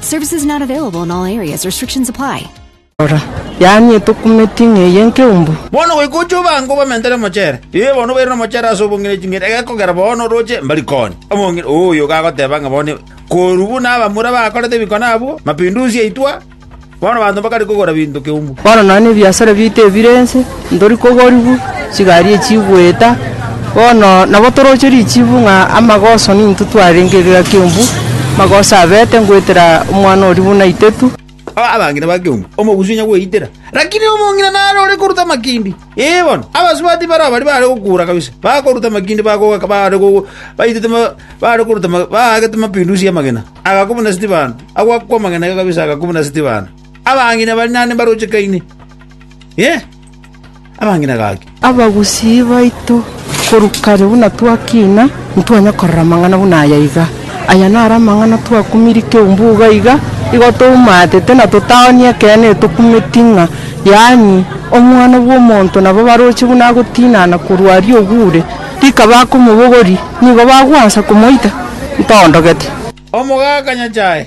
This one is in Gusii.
Services not available in all areas. Restrictions apply. Rora, yaani etokumeti ng'eye nkeumbu. Bono goika oche obange obamente nemochere. Ee, bono obaire nomochere ase obong'ina ching'eni, egekogera bono oroche mbari konya. Omong'ina oyo gagoteba ng'a bono korwa buna abamura bakorete ebikone abwo, mapinduzi aitwa, bono abanto mbakare kogora binto keumbu. Bono nonya nebiasare biaito ebire ense, Ntori kogorigwa chigari echigweta, bono nabo toroche richibu ng'a amagoso nintwe twarenge egegaa kiumbu, amagoso abete ngoetera omwana oria buna itetu. Abang'ina ba kiumbu, omogusi onya gweitera, lakini omong'ina nare ore koruta amakindi. Ee, bono abasubati barao baria baare gokuura kabisa, bakoruta amakindi bagogaka baare baitete baare koruta baagete mapindusi y'amagena, agakwa buna Stefano, agwakwa amagena iga kabisa agakwa buna Stefano. Abang'ina bari naende mbarochekaine, Inee! Abang'ina gaki? Abagusii baito korwa kare buna twakina, ntitwanya korora amang'ana buna aya iga. Aya naro amang'ana twakumirie keumbu iga iga, igo toumatete na totaonia ekeene etokumeti ng'a yaani, Omwana bw'omonto nabo baroche buna agotinana korwa aria ogure, rika bakomobogori, nigo bagwansa komoita ntondogete. Omogaka Nyasae.